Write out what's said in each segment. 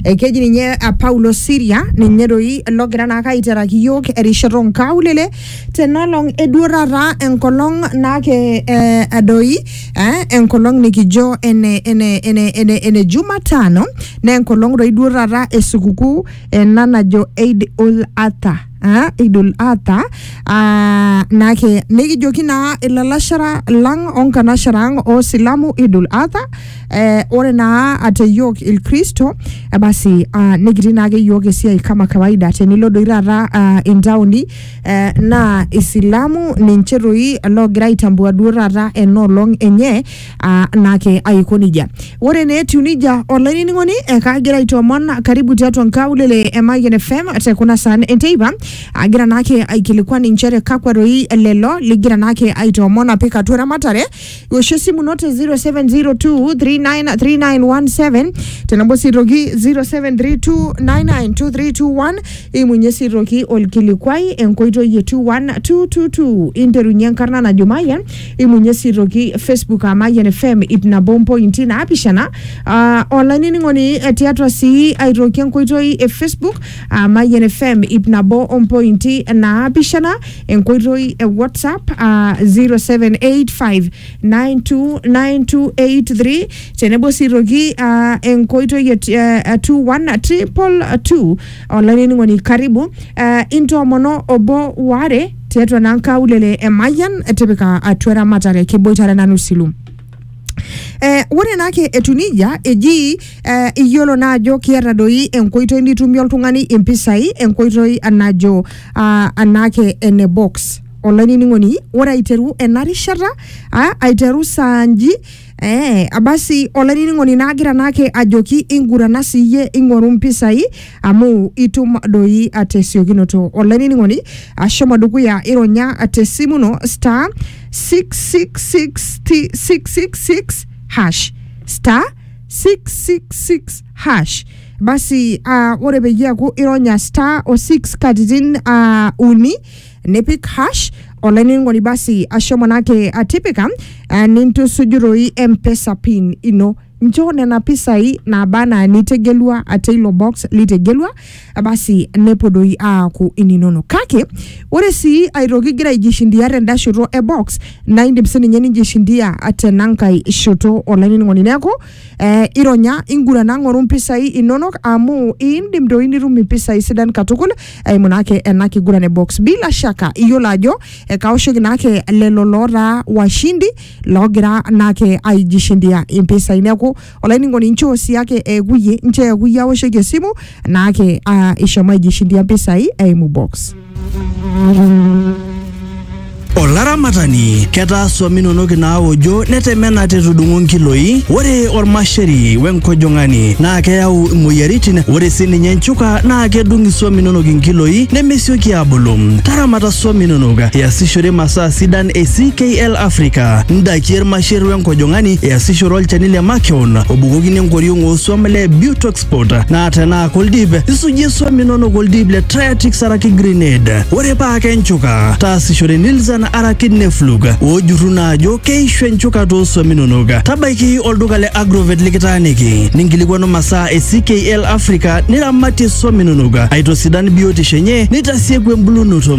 Eh, keji ninye eh, Paulo Siria ninye doi logira naake aiteraki iyiook erishata onkaulele tenalong eduorata enkolong naake eh, doi eh, enkolong nikijo ene, ene, ene, ene, ene Jumatano naa enkolong doi duorata esukukuu ena najo Eid ul Adha ah, idul adha ah, nake nikijoki naa ilalashera lang onkanashera ang osilamu idul adha eh, ore naa ate yiok ilkristo eh, basi ah, nikitii naake yiok esiai kama kawaida tenilo doi taata ah, intaoni eh, naa isilamu ninche toi loogira aitambua duo taata enoolong enye aa naake aiko nejia ore naa etiu nejia olainining'oni ekaagira aitoomon karibu tiatua nkaulele e Mayian FM te kuna saan enteipa agira naake aikilikuan inchere kakwa doi lelo ligira naake aitoomon apik atua eramatare woshie esimu ino te 0702393917 tenebo sii aitoki 0732992321 imunye sii aitoki olkilikuai enkoitoi e 21222 interunye enkarna najo Mayian Eimunye sii aitoki Facebook aa Mayian FM ip nabo ompointi naapishana aa olainining'oni eh, tiatua sii aitoki enkoitoi e Facebook aa Mayian FM ip nabo ompointi naapishana enkoitoi e WhatsApp aa 0785929283 tenebo sii aitoki aa enkoitoi e t- eh, 21222 olainining'oni karibu eh, intoomono obo waare tiatua naa nkaulele e Mayian tipika atua eramatare kiboitare nanu silu. Eh, ore naake etu nijia eji eh, iyiolo naa ajo kiata doi enkoitoi nitumie oltung'ani impisai enkoitoi najo ah, anaake ene box olainining'oni ore aiteru ena rishata ah, aiteru saa nji Eh, basi olainining'oni naagira naake ajoki ingurana siiyie ing'oru mpisai amu itum doi tesiokinoto. Olainining'oni ashomo dukuya ironya tesimu ino star 666 666 hash star 666 hash basi uh, ore peyie eaku ironya star o 6 katitin uh, uni nipik hash olainining'oni basi asho manake atipika uh, nintusujuroi mpesa pin ino nchoo nena pisai naaba anaa nitegelua ate ilo box litegelua eh, basi nepuo doi aaku ininono kake ore sii aitoki igira aijishindia tenda shoto e box naa indim sininye ninjishindia tenankae shoto olainining'oni neeku Eh, ironya ingurana ng'oru mpisai inonok amu iindim doi nitum impisai sidan katukul eimu naake ena kiguran e box bila shaka iyiolo ajo eh, kaoshoki naake lelo lootaa washindi loogira naake aijishindia impisai neeku olainining'oni nchoo sii ake eekuye nchoo eekuye aoshoki esimu naake ah, ishomo aijishindia mpisai eimu box Olaramatani, ketaa swam inonok inaaojo netemena tetudung'o nkiloi. Ore olmasheri wenkojong'ani naa keyau imoyiaritin. Ore sii ninye nchuka naa kedung iswam inonok inkiloi nemesioki aabulu. Taramata swam inonok iasishore masaa sidan e CKL Africa, ndakie ilmasher wenkojong'ani, iasishore olchani le makeon obukokini enkoriong oo swam le Butox passport naa tenaa koldip isujie swam inonok oldip le Triatix araki Grenade ore paa kenchuka taasishore Nilzan araki Neflug oojurru naa ajo keishu enchuka too swam inonok tabaiki olduka le Agrovet likitaaniki ninkilikuanu masaa e CKL Africa niramatie swam inonok aitosidan biotisho enye nitasieku embulunoto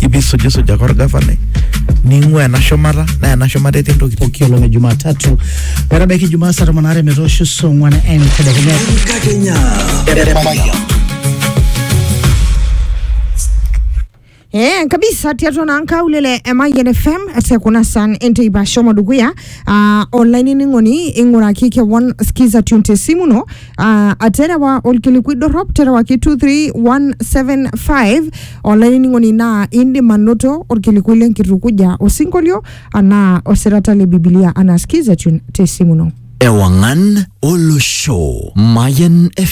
ipi sujisuja kwa orgavanai ning'ua ena shumata naa ena shumata etii ntokitin pooki olong e Jumatatu metabaiki Jumaa saa tomon aare metoosho saa ong'wan entedekenya. Enkakenya. Eh, kabisa tiatua naa nkaulele e Mayian FM te kuna san enteipa shomo dukuya uh, olainining'oni ing'uraki kewon skiza tune te simu ino Uh, aterewa olkilikuai dorrop terewaki 23175 olainining'oni naa indim anoto olkilikuai lenkitukuja osinkolio anaa osirata le bibilia anaa skiza tune te simu ino Ewangan Olosho Mayan FM